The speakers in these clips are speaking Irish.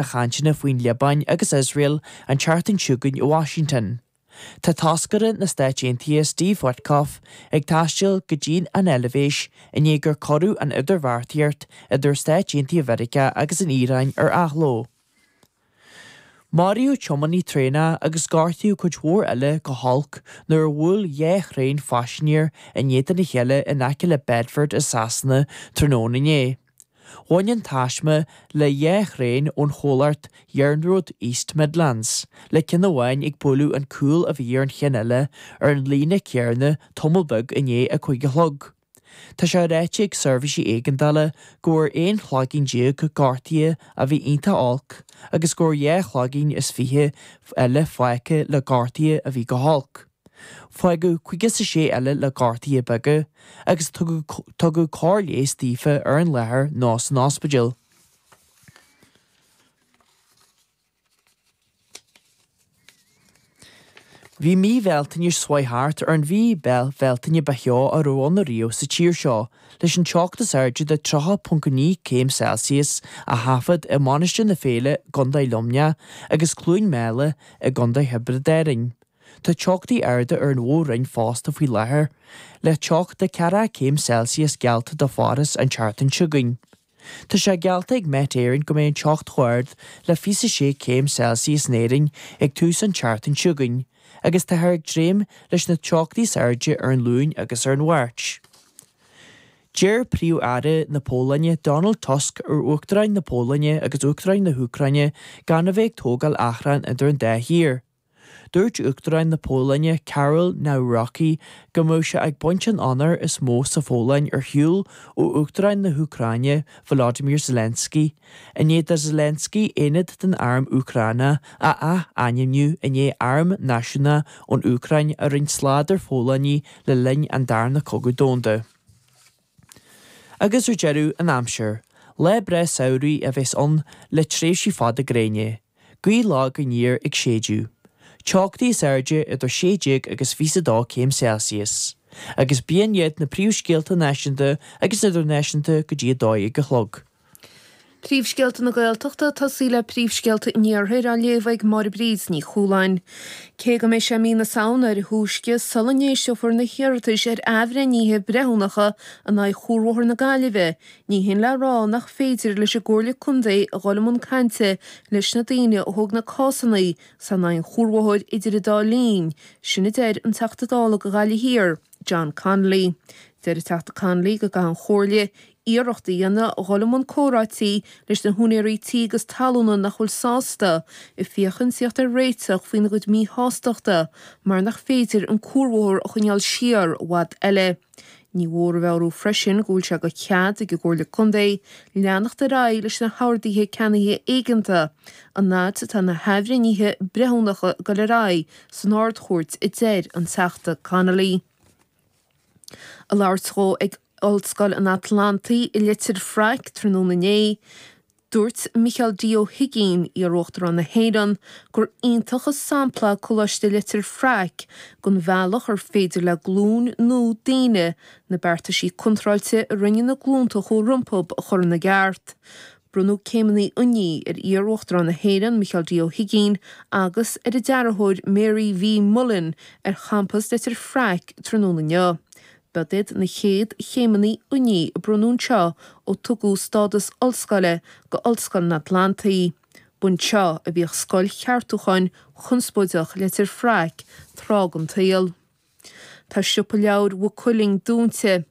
na cainteanna faoin Liobáin agus Iosrael an tseachtain seo chugainn i Washington. Tá toscaire na Stáit Aontaithe Steve Witkoff ag taisteal go dtín an Eilbhéis i ndiaidh gur cuireadh an idirbheartaíocht idir Stáit Aontaithe Mheiriceá agus an Iaráin ar athló. Maraíodh tiománaí traenach agus gortaíodh cuid mhór eile go holc nuair a bhuail dhá thraein phaisinéirí in éadan a chéile in aice le Bedford i Sasana tráthnóna inné. Bhain an taisme le dhá thraein ón chomhlacht Iarnród East Midlands, le ceann amháin ag bualadh an cúl a bhí ar an chinn eile ar an líne céarna tamall beag i ndiaidh a cuig a chlog. Tá sé ráite ag Seirbhísí Éigeandála go bhfuair aon chloigeann déag gortuithe a bhí iontach olc agus go bhfuair dhá chloigeann is fiche eile fágtha le gortuithe a bhí go holc. Fágadh caoga is a sé eile le gortuithe beaga agus tugadh cóir leighis daofa ar an láthair nó san ospidéal. Bhí mí Bhealtaine seo thart ar an mhí Bhealtaine ba theo a raibh ann ariamh sa tír seo, leis an teocht is airde de 30.9 céim Celsius á thaifead i Mainistir na Féile i gCondae Luimneach agus Cluain Meala i gCondae Thiobraid Árann. Tá teochtaí arda ar an mhór-roinn fosta faoi láthair, le teocht de 40 céim Celsius geallta do Pháras an tseachtain seo chugainn. Tá sé geallta ag Met Éireann go mbeidh an teocht chomh ard le 26 céim Celsius in Éirinn ag tús an tseachtain seo chugainn agus táthar ag dréim leis na teochtaí is airde ar an Luain agus ar an Mháirt. D'iarr Príomh-Aire na Pólainne Donald Tusk ar Uachtarán na Pólainne agus Uachtarán na hÚcráine gan a bheith ag tógáil achrainn idir an dá thír. Dúirt Uachtarán na Pólainne, Karol Nawrocki, go mbeadh sé ag baint an onóir is mó sa Phólainn ar shiúl ó Uachtarán na hÚcráine, Volodymyr Zelensky, i ndiaidh do Zelensky aonad den arm Úcráineach a athainmniú i ndiaidh Arm Náisiúnta ón Úcráin a rinne slad ar Pholannaigh le linn an Darna Cogadh Domhanda. Agus ar deireadh an aimsir, lá breá samhraidh a bheas ann le tréimhsí fada gréine, gaoth lag aniar ag séideadh, teochtaí is airde idir sé déag agus 22 céim Celsius, agus b'shin iad na príomhscéalta náisiúnta agus idirnáisiúnta go dtí a dó dhéag a chlog. Príomhscéalta na Gaeltachta, ag tosaí le Príomhscéalta an Iarthair á léamh ag Máire Bríd Ní Chualáin. Cé go mbeidh sé mí na Samhna ar a thúisce sula n-éisteofar na hiarratais ar athbhreithnithe breithiúnacha in aghaidh Chuarbhóthar na Gaillimhe, ní shin le rá nach féidir leis an gComhairle Contae a dhul i mbun cainte leis na daoine a thóg na cásanna sin in aghaidh an chuarbhóthair idir an dá linn, sin a deir an Teachta Dála do Ghaillimh Thiar, John Connolly. Deir an Teachta Connolly go gcaithfidh an Chomhairle iarracht a dhéanamh dhul i mbun comhráití leis na húinéirí tí agus talúna nach bhfuil sásta, ag féachaint le thíocht ar réiteach faoina gcuid míshástachta mar nach féidir an cuarbhóthar a choinneáil siar i bhfad eile. Ní mhór a mheabhrú freisin go bhfuil sé de chead ag an gComhairle Contae leanacht ar aghaidh leis na horduithe ceannaithe éigeantacha an fhad atá na hathbhreithnithe breithiúnacha ag dul ar aghaidh san Ard-Chúirt, a deir an Teachta Connolly. Ag labhairt dhó ag Ollscoil an Atlantaigh i Leitir Fraic tráthnóna inné, dúirt Micheál D. Ó hUigínn, iar-Uachtarán na hÉireann, gur iontach an sampla é Coláiste Leitir Fraic den bhealach ar féidir le glúin nua daoine na beartaisí contráilte a rinne na glúnta a chuaigh rompu a chur ina gceart. Bronnadh céimeanna oinigh ar iar-Uachtarán na hÉireann, Micheál D. Ó hUigínn, agus ar a dearthóir Mary V. Mullen ar champas Leitir Fraic tráthnóna inniu. B'iad iad na chéad chéimeanna oinigh a bronnadh anseo ó tugadh stádas ollscoile do Ollscoil an Atlantaigh. B'anseo a bhíodh Scoil Cheartúcháin chonspóideach Leitir Fraic tráth den tsaol. Tá siopa leabhair Mhaigh Cuilinn dúinte.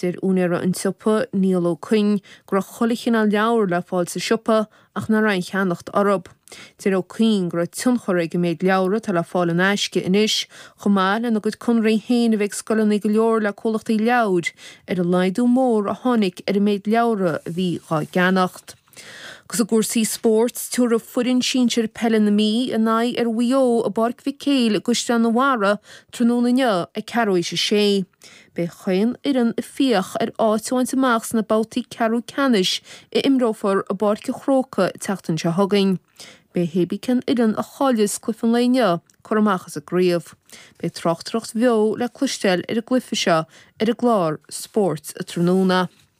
Deir úinéara an tsiopa, Niall Ó Cuinn, go raibh chuile chineál leabhar le fáil sa siopa ach nach raibh aon cheannacht orthu. Deir Ó Cuinn go raibh tionchar ag an méid leabhar atá le fáil in aisce anois, chomh maith lena gcuid conraí féin a bheith ag scoileanna go leor le comhlachtaí leabhair, ar an laghdú mór a tháinig ar an méid leabhar a bhí dhá gceannacht. Agus i gcúrsaí spóirt, tiubharfaidh foireann sinsir peile na Mí a n-aghaidh ar Mhaigh Eo i bPáirc Mhic Éil i gCaisleán an Bharraigh tráthnóna inniu ag ceathrú théis a sé. Beidh chaon fhoireann ag fiach ar áit a bhaint amach sna babhtaí ceathrú ceannais a n-imreofar i bPáirc a' Chróca an tseachtain seo chugainn. Beidh hé bí cén fhoireann a chailleas cluife an lae inniu curtha amach as an gcraobh. Beidh tráchtaireacht bheo le cloisteáil ar an gcluife seo ar an gclár Spórt an Tráthnóna.